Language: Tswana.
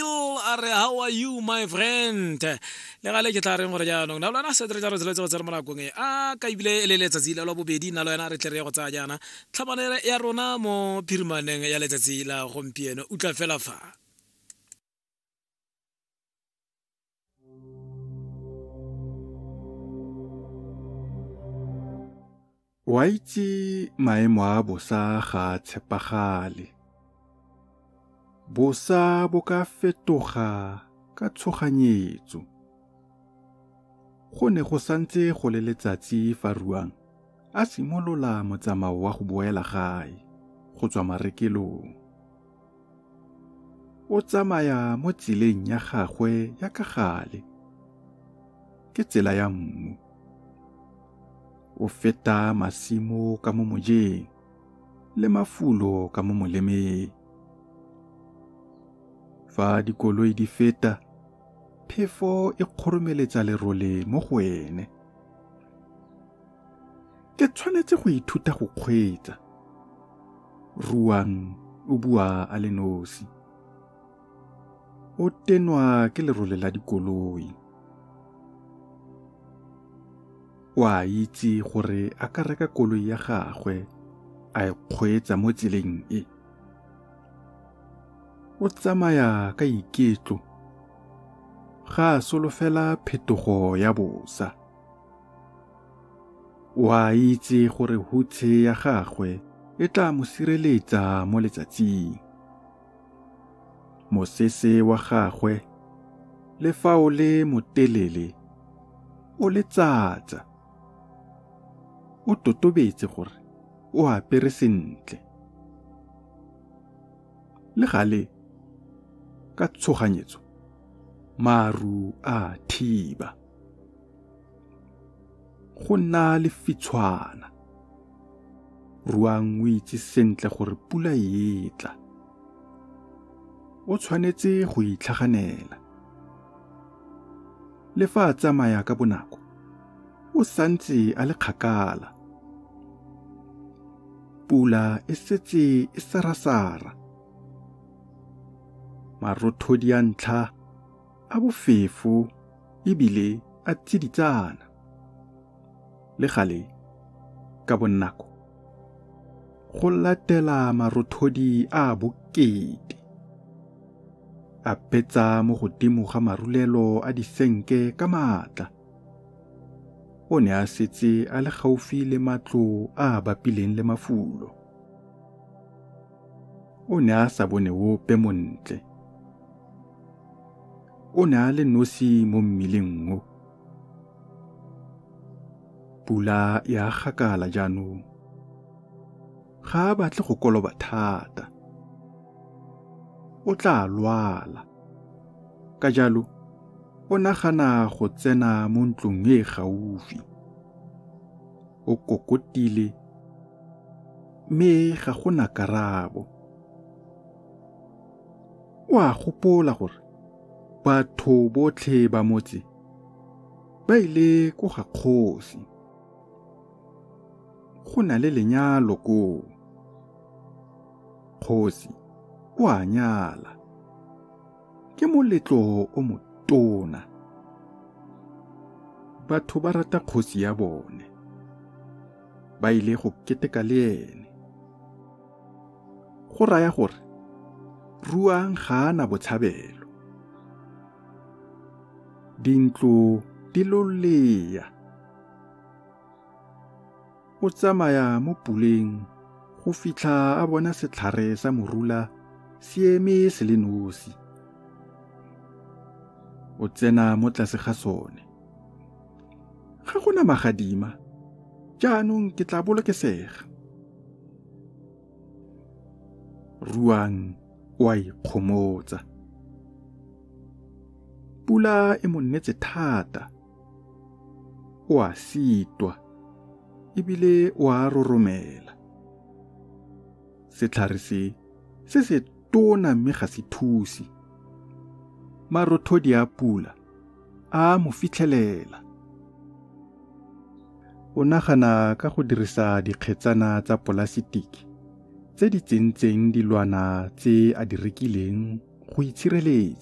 a re how are you my friend le gale ke tla reng gore jaanong na lona setere ja rotsele tsego tsere mo nakong e a ka ebile e le letsatsi la lwa bobedi na lo yena re tle re ye go tsaya jaana tlhabanele ya rona mo phirimaneng ya letsatsi la gompieno utlwa fela fa O a itse maemo a bosa ga a tshepagale. Bosa bo ka fetoga ka tshoganyetso. Go ne go santse go le letsatsi fa Ruang a simolola motsamao wa go boela gae go tswa marekelong. o tsamaya mo tseleng ya gagwe ya ka gale ke tsela ya mmu o feta masimo ka mo mojeng le mafulo ka mo molemeng fa dikoloi di feta phefo e kgoromeletsa lerole mo go ene ke tshwanetse go ithuta go kgweetsa ruang o bua a le nosi o tenwa ke lerole la dikoloi o a itse gore a ka reka koloi ya gagwe a e kgweetsa mo tseleng e o tsamaya ka iketlo ga a solofela phetogo ya bosa O a itse gore hutshe ya gagwe e tla mo sireletsa mo letsatsing. Mosese wa gagwe le fa o le motelele o letsatsa. O totobetse gore o apere sentle. Le gale ka tshoganyetso maru a thiba. go nna lefitshwana ruang o itse sentle gore pula e tla o tshwanetse go itlhaganela le fa a tsamaya ka bonako o santse a le kgakala pula e setse e sarasara marothodi a ntlha a bofefo ebile a tsiditsana le gale ka bonako go latela marothodi a bokete a betsa mo godimo ga marulelo a disenke ka maatla o ne a setse a le gaufi le matlo a a bapileng le mafulo o ne a sa bone ope montle o ne a le nosi mo mmileng o pula ya gakala jaanong ga a batle go koloba thata o tla lwala ka jalo o nagana go tsena mo ntlong e gaufi o kokotile mme ga go na karabo o a gopola gore batho botlhe ba motse ba ile ko ga kgosi go na le lenyalo koo kgosi o a nyala ke moletlo o motona batho ba rata kgosi ya bone ba ile go keteka le ene Go raya gore Ruang ga a na botshabelo. Dintlo di lolea. O tsamaya mo puleng go fitlha a bona setlhare sa morula se eme se le nosi. O tsena mo tlase ga sone. Ga gona magadima. Jaanong ke tla bolokesega. ruang o a ikgomotsa pula e mo nnetse thata o a sitwa ebile o a roromela setlhare se se se tona mme ga se thusi marothodi a pula a mo fitlhelela. O nagana ka go dirisa dikgetsana tsa polasitiki tse di tsentseng dilwana tse a di rekileng go itshireletsa.